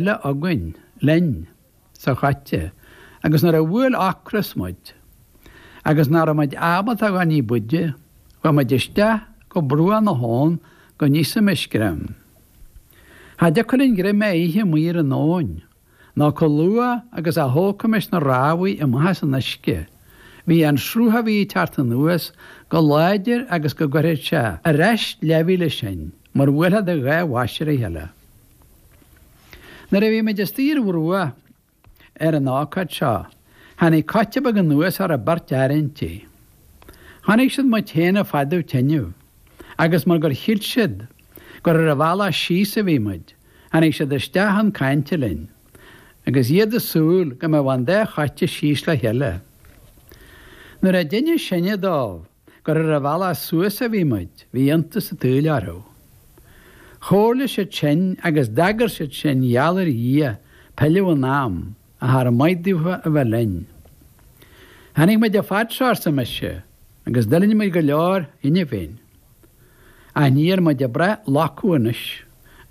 le, againn, linn, sa choite, agus nuair a bhuail ocras muid, agus nach raibh muid ábalta a ghabháil ní b'fhaide, chuaigh muid isteach go bruach na habhann go n-íosfaimis greim. Cha dtiocfadh linn greim a ithe amuigh ar an abhainn, nó comh luath agus a thógfaimis na rámhaí amach as an uisce, bhíodh an sruth a bhí ag teacht anuas comh láidir agus go gcuirfeadh sé ar ais leathmhíle sinn mar a bhuailfeá do dhá bhois ar a chéile. Nuair a bhí muid istigh ar bhruach ar an ócáid seo, tháinig coite beag anuas a raibh beirt fhear inti. Chonaic siad muid féin ag fadú tineadh agus mar gur shíl siad gur ar an bhealach síos a bhí muid, tháinig siad isteach chun cainte linn agus iad ag súil go mbeadh an dá choite síos le chéile. Nuair a d'inis sinne dóibh. gur ar an bhealach suas a bhí muid, bhí iontas an tsaoil orthu. Chomhairligh siad sinn agus d'agair siad sinn gheall ar Dhia pilleadh in am a thar am maighdeacha a bheith linn. Tháinig muid an fad seo, arsa mise, agus d'fhulaing muid go leor cheana féin. Ach níl muid ag brath locadh anois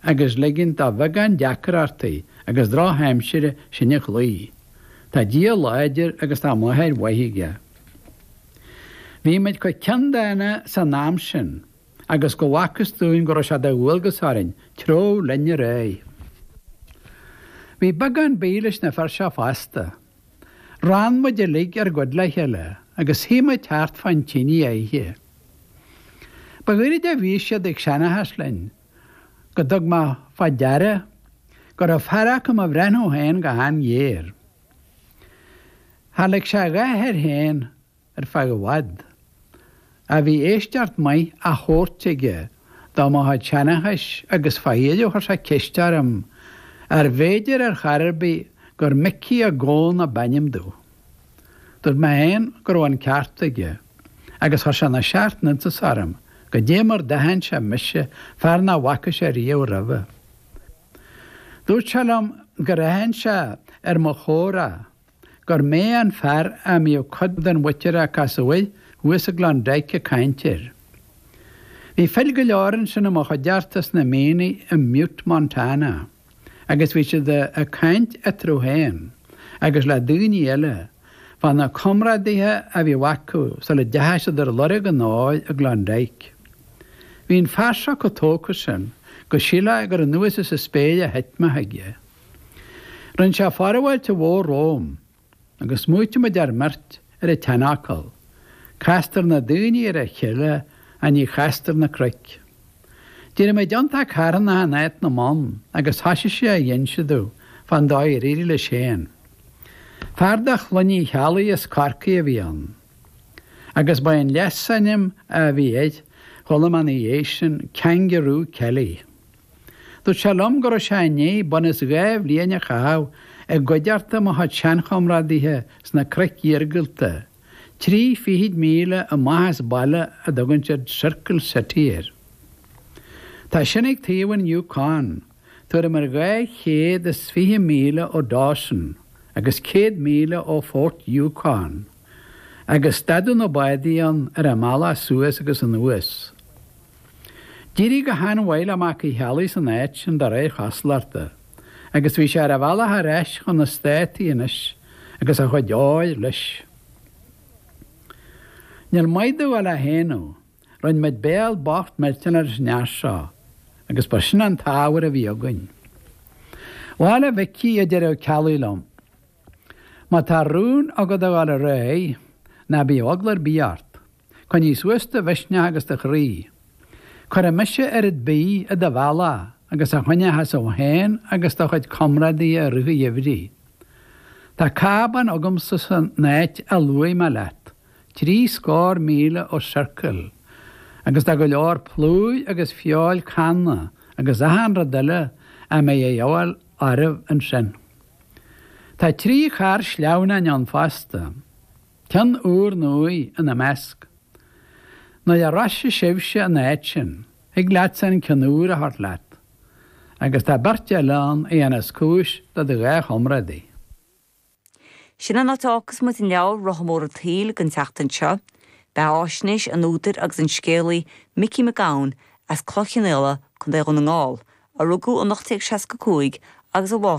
agus ligint do bheagán deacrachtaí agus drochaimsire sinn a chloí. Tá Dia láidir agus tá máthair mhaith aige. Bhí muid comh ceanndána san am sin agus go bhfacthas dúinn go raibh sé de dhualgas orainn treabhadh linn ar aghaidh. Bhí beagán bídh leis na fir seo fosta. Rann muid uilig ár gcuid le chéile agus shuigh muid thart fán tinidh á ithe. Ba ghairid a bhí siad ag seanchas linn go dtug mé fá deara go raibh fear acu ag mo bhreathnú féin go han-ghéar. Char lig sé a dhath air féin ar feadh i bhfad. Ach bhí éisteacht maith á thabhairt aige do mo chuid seanchais agus faoi dheireadh chuir sé ceist orm arbh fhéidir ar chor ar bith gur Micí Mac Gabhann a b'ainm domh. Dúirt mé féin go raibh an ceart aige agus chuir sé na seacht n-iontas orm goidé mar a d'aithin sé mise, fear nach bhfaca sé riamh roimhe. Dúirt sé liom gur aithin sé ar mo chomhrá gur mé an fear a mbíodh cuid den mhuintir a casadh air thuas i gClondyke ag caint air. Bhí fir go leor ansin i mo chuideachta sna mianaigh i mButte, Montana, agus bhí siad ag caint eatarthu féin agus le daoine eile, fá na comrádaithe a bhíodh acu sula dteachaidh siad ar lorg an óir i gKlondike. Bhí an fear seo chomh tógtha sin go sílfeá gur anuas as an spéir a thit mé chuige. Rinn sé forbháilte mhór romham, agus smaoitigh muid ár mbeirt ar an tseanfhocal, Castar na daoine ar a chéile ach ní chastar na cnoic. D'éirigh muid iontach carthannach in áit na mbonn agus thoisigh sé a inse domh fán dóigh ar éirigh leis féin. Fear de chlann Uí Cheallaigh as Corcaigh a bhí ann, agus ba é an leasainm a bhí air chuile am ina dhiaidh sin, Kangaroo Kelly. Dúirt sé liom go raibh sé i ndiaidh bunús dhá bhliain a chaitheamh i gcuideachta mo chuid seanchomrádaithe sna cnoic iargúlta, trí fichid míle amach as baile a dtugann siad Circle City air. Tá sin ag taobh an Yukon. tuairim ar 220 míle ó Dawson agus 100 míle ó Fort Yukon, agus stadadh na bádaí ann ar a mbealach suas agus anuas. D'éirigh go han-mhaith le Mac Uí Cheallaigh san áit sin de réir chosúlachta, agus bhí sé ar a bhealach ar ais chun na Státaí anois agus a chuid óir leis. Níl maith domh a bheith á shéanadh. Rinne muid béal bocht millteanach leis an fhear seo agus ba sin an t-ábhar a bhí againn. Bhail, a Mhicí, a deir an Ceallach liom, má tá rún agat a dhul ar aghaidh, ná bíodh eagla ar bith ort. Coinnigh suas do mhisneach agus do chroí. Cuirfidh mise oiread bídh i do bhealach agus a choinneochas tú féin agus do chuid comrádaithe i rith an gheimhridh. Tá cábán agamsa san áit a luaigh mé leat. trí scór míle ó Circle, agus tá go leor plúir agus feoil canna agus achan rud eile a mbeidh a dhíobháil oraibh ansin. Tá trí charr sleamhnáin ann fosta, ceann úr nua ina measc. Nuair a shroichfeas sibhse an áit sin, thig leatsa an ceann úr a thabhairt leat, agus tá beirt eile ann a dhéanfas cúis do do dhá chomrádaí. Sin an áit a fhágfas muid an leabhar, Rotha Mór an tSaoil, don tseachtain seo. Beatháisnéis an údair agus an scéalaí Micí Mac Gabhann as Cloich Chionnaola, Co. Dhún na nGall, a rugadh in 1865 agus a bhásaigh in